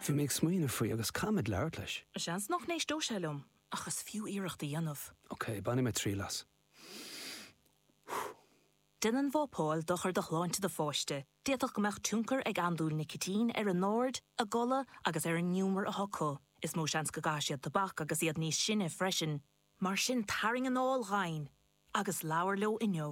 Bhí mé ag smaoineamh faoi agus caithfidh mé labhairt leis. Seans nach n-éisteodh sé liom ach is fiú iarracht a dhéanamh. Ok, bainfidh mé triail as. Déanann vapáil dochar do shláinte do pháiste, d'fhéadfadh go mbeadh tionchar ag andúil nicitín ar a n-aird, a gcodladh agus ar an ngiúmar atá acu. Is mó seans go gcaithfidh siad tobac agus iad níos sine freisin. Mar sin tarraing anáil dhomhain agus labhair leo inniu.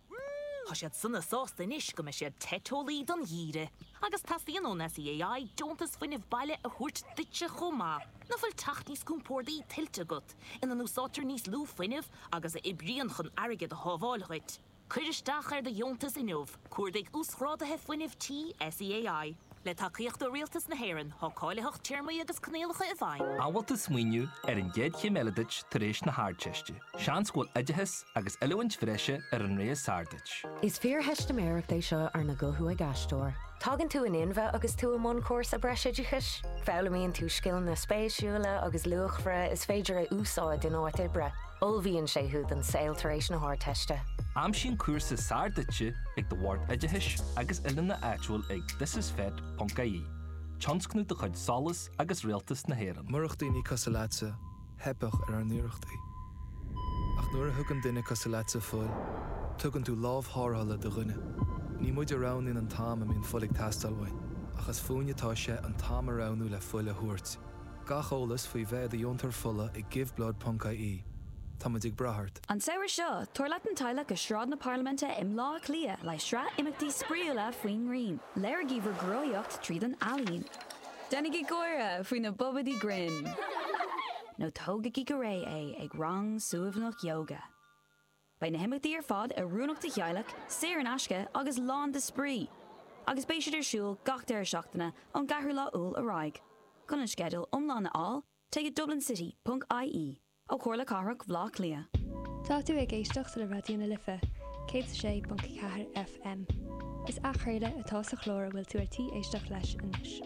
Tá siad sona sásta anois go mbeidh siad te teolaí don gheimhreadh agus teastaíonn ón SEAI deontas fuinnimh baile a thabhairt duitse chomh maith. Ná bhfuil teach níos compórdaí tuillte agat, ina n-úsáidtear níos lú fuinnimh agus a oibríonn chun airgead a shábháil dhuit? Cuir isteach ar do dheontas inniu. Cuardaigh Uasghráduithe Fuinnimh Tí SEAI. Le tacaíocht ó Rialtas na hÉireann. Tá cáilitheacht téarmaí agus coinníollacha i bhfeidhm. An bhfuil tú ag smaoineamh ar an gcéad chéim eile duit tar éis na hArdteiste. Seans go bhfuil oideachas agus oiliúint bhreise ar an rogha is fearr duit. Is fíortheistiméireacht é seo arna guthú ag aisteoir. Tagann tú in inmhe agus tú i mbun cúrsa breisoideachais. Foghlaimíonn tú scileanna spéisiúla agus luachmhara is féidir a úsáid in áit oibre. Ullmhaíonn sé thú don saol tar éis na hArdteiste. Aimsigh an cúrsa is fearr duitse ag do Bhord Oideachais agus Oiliúna áitiúil ag thisisfet.ie, tionscnamh de chuid Solas agus Rialtas na hÉireann. Murach daoine cosúil leatsa, theipfeadh ar ár n-iarrachtaí. Ach nuair a thugann duine cosúil leatsa fuil, tugann tú lámh tharrthála do dhuine. Ní muid a roghnaíonn an t-am a mbíonn fuil ag teastáil uainn, ach is fúinn atá sé an t-am a roghnú le fuil a thabhairt. Gach eolas faoi bheith i do dheontóir fola ag giveblood.ie. Táimid ag brath ort. An samhradh seo, tabhair leat an teaghlach go Sráid na Parlaiminte i mBleá Cliath le sraith imeachtaí spraíúla faoin ngrian. Léirigí bhur gcroíúlacht tríd an ealaín. Déanaigí gáire faoi na bobaidí grinn. Nó tógaigí go réidh é ag rang suaimhneach yoga. Beidh na himeachtaí ar fad oiriúnach do theaghlaigh, saor in aisce agus lán de spraoi, agus beidh siad ar siúl gach deireadh seachtaine ón gceathrú lá Iúil ar aghaidh. Chun an sceideal iomlán a fháil, téigh go dublincity.ie ó Chomhairle Cathrach Bhleá Cliath. Tá tú ag éisteacht le Raidió na Life, 106.4 FM. Is athchraoladh atá sa chlár a bhfuil tú ar tí éisteacht leis anois.